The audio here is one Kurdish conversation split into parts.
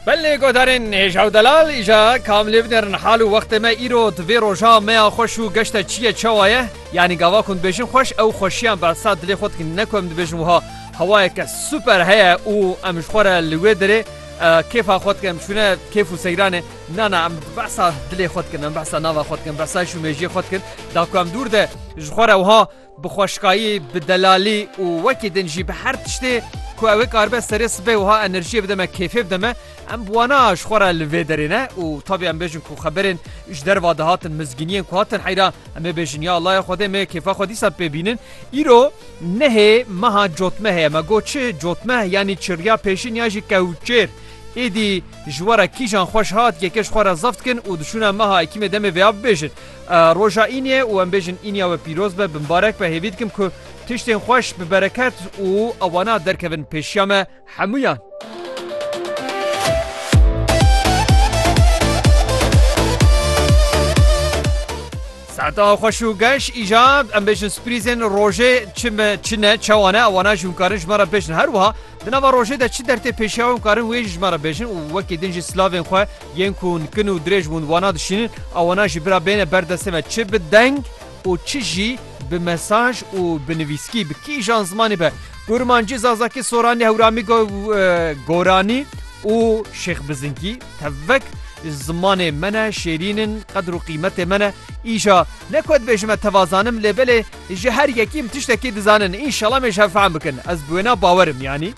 Belê godarên hêja û delal îja kam lê binerin hal û wextê me îro di vê roja meya xweş û geşta çi ye çawa ye yanî gava ku dibêjin xweş ew xweşiyan behsa dilê xwe dikin ne ku em dibêjin wiha hewayeke super heye û em ji xwe re li wê derê kêfa xwe dikin em çûne kêf û seyranê na na em behsa dilê xwe dikin em behsa nava xwe dikin behsa îş û mêjiyê xwe dikin da ku em dûr de ji xwe re wiha Bi xweşkayî, bi delalî û wekî din jî bi her tiştê ku ew ê karibe serê sibê wiha enerjiyê bide me, kêfê bide me, em bi wana ji xwe re li vê derê ne û tabî em bêjin ku xeberên ji derva dihatin, mizgîniyên ku hatin heyra em ê bêjin ya Allah ya Xwedê me kêfa xwe dîsa pê bînin. Îro nehê meha cotmehê ye. Me got çi? Cotmeh yanî çirriya pêşîn yan jî kewçêr. Êdî ji we re kîjan xweş hat yekê ji xwe re zaf dikin û diçûne meha ekîmê demê vêya bibêjin. Roja Îniye û em bêjin Îniya we pîroz be bi mbarek be hêvî dikim ku tiştên xweş bi bereket û ewana derkevin pêşiya me hemûyan. Saeta xweş û geş îja em bêjin sprîzên rojê çi me çi ne çewa ne ewana jî hûn karin ji me re bêjin her wiha di nava rojê de çi dertê pêşiya wan karin wê jî ji me re bêjin û wekî din jî silavên xwe Yên ku nikin û dirêj bûn wana dişînin a wana jî bira bêne ber destê me çi bi deng û çi jî bi mesaj û bi nivîskî bi kîjan zimanê be Kurmancî, Zazakî, Soranî, Hewramî, Goranî û Şêx Bizinkî tevek zimanê me ne, şêrîn in, qedir û qîmetê me ne. Îja ne ku dibêjim me teva zanim lê belê ji her yekî em tiştekî dizanin. Înşela em ê ji hev fehm bikin. Ez bi wêna bawer im yanî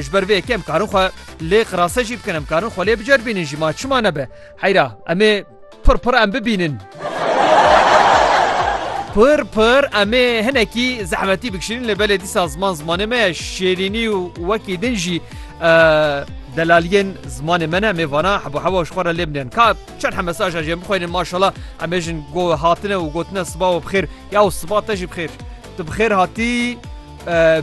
ji ber vê yekê em karin xwe Lê qirase jî bikin em karin xwe lê biceribînin jî ma çima nebe. Heyra em ê pir pir em bibînin. Pir pir em ê hinekî zehmetî bikişînin lê belê dîsa ziman zimanê me ye şêrînî û wekî din jî delaliyên zimanê me ne mêvana hebo hewa ji xwe re lê binin ka çend he mesaja jê bixwênin maşala em êjin go hatine û gotine siba û bixêr ya û siba te jî bixêr tu bixêr hatî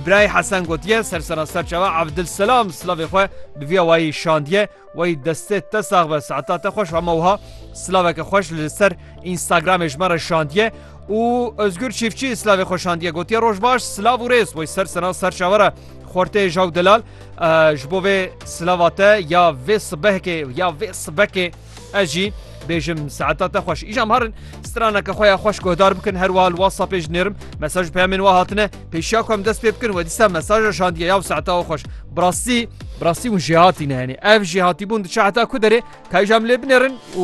Birayê Hesen gotiye sersera ser çawa Evdilselam silavê xwe bi viya wayî şandiye wayî destê te sax be saeta te xweş hema wiha silaveke xweş li ser Instagramê ji me re şandiye û Özgür Çîfçî silavê xwe şandiye gotiye roj baş silav û rêz wayî sersera ser çawa re xortê jaw delal ji bo vê silava te ya vê sibehkê ya vê sibekê Ez jî bêjim saeta te xweş îjam harin straneke xwe ya xweş guhdar bikin her wiha li WhatsAppê ji nêrim mesaj peyamên wa hatine pêşiya ku em dest pê bikin we dîsa mesaja şandiye ya saeta xwe xweş bi rastî bi rastî hûn jêhatî ne henê ev jêhatîbûn diçe heta ku derê ka îjam lê binêrin û